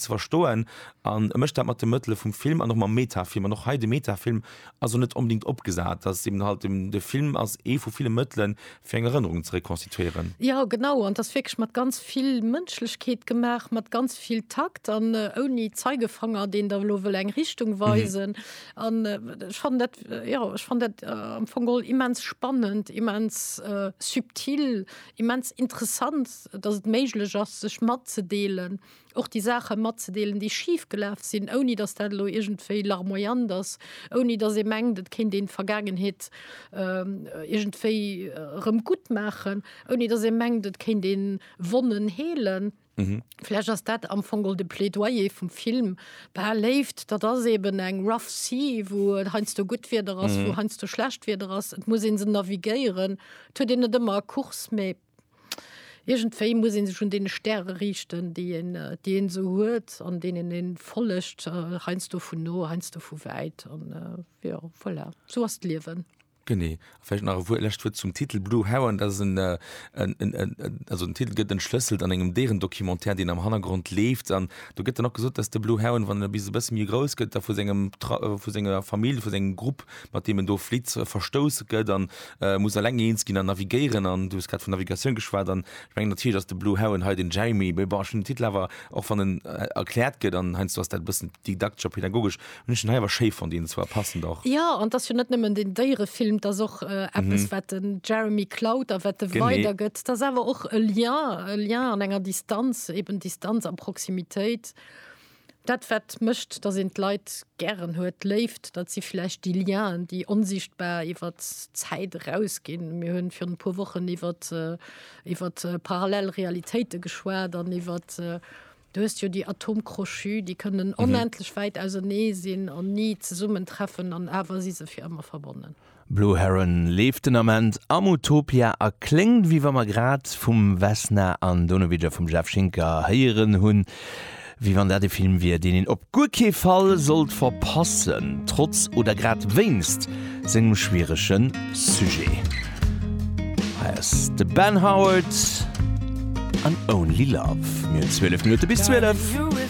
ze verstoen an e mécht dat mat de Mëttele vum Film an och mam Metafilm an och hei de Metafilm ass jo net onbedingt opgesat, dass eben halt dem de Film ass ee vu ville Mëttele fir eng Erënnerung ze rekonstituieren. Jo genau an et ass wierklech mat ganz vill Mënschlechkeet gemaach, mat ganz vill Takt an ouni Zeigefanger deen der elo wëll eng Richtung weisen an ech fannen dat jo ech fannen dat am Fong geholl immens spannend, immens subtil, immens interessant, dass et méiglech ass sech matzedeelen. och déi Saache matzedeelen, déi schif gelaf sinn, ouni datt dat elo iergendwéi larmoyant ass, ouni datt ee mengt, et kéint een d'Vergaangenheet iergendwéi erëm gutt maachen, ouni datt ee mengt, et kéint ee Wonnen heelen. Vläch ass dat am Fong och de Plädoyer vum Film, Bah, Léift, dat ass eeben eng rough sea, wou et heiansdo gutt Wieder ass, wou heiansdo schlecht Wieder ass, et muss ee se navigéieren. Et huet een net ëmmer e Kurs, mee. Irgendwéi muss een sech un den Stäre riichten déi een déi een esou huet an deenen een follegt, heiansdo vun no, heiansdo vu wäit an jo voilà sou ass d'Liewen. Genee. A vläicht nach e Wuert lescht Wuert zum Titel Blue Heron, dat ass en en en en also den Titel gëtt entschlësselt an engem Déierendocumentaire deen am Hannergrond leeft an do gëtt dann och gesot, datt de Blue Heron wann en e bis e bësse méi grouss gëtt da vu sengem vu senger Famill vu sengem Grupp Technik, mat deem en do flitt, verstouss gëtt a muss eleng eens ginn an navigéieren. An du hues grad vun Navigatioun geschwat an ech mengen natierlech ass de Blue Heron hei den Jeremy, mee bon, ech hunn den Titel awer, och wann en erkläert gëtt an heiansdo ass dat e bëssen didaktesch a pedagogesch, hunn ech den hei awer schéi fonnt innen zwar, passend och. Jo, an et ass jo net nëmmen den Déierefilm, et ass och eppes, wat de Jeremy klaut a wat e weidergëtt. Et ass awer och e Lien, e Lien an enger Distanz, eben Distanz a Proximitéit. Dat wat mécht, datt een d'Leit gären huet, d'Léift, dat si vläicht déi Lienen, déi onsichtbar iwwer d'Zäit eraus ginn. Mir hunn virun e puer Wochen iwwert iwwert parallel Realitéite geschwat an iwwert, du hues jo déi Atome crochus, déi kënnen onendlech wäit ausenee sinn an ni zesummen treffen an awer si se fir ëmmer verbonnen. Blue Heron leeft den Ament am Utopia a kléngt wéi wa mer grad vum Vesna an Donovic a vum Jeff Schinker héieren hunn, wéi wann dat e Film wier, deen een op guer kee Fall sollt verpassen, trotz oder grad wéinst sengem schwierege Sujet. Hei ass de Ben Howard an Only Love. Mir hunn 12 Minutte bis 12.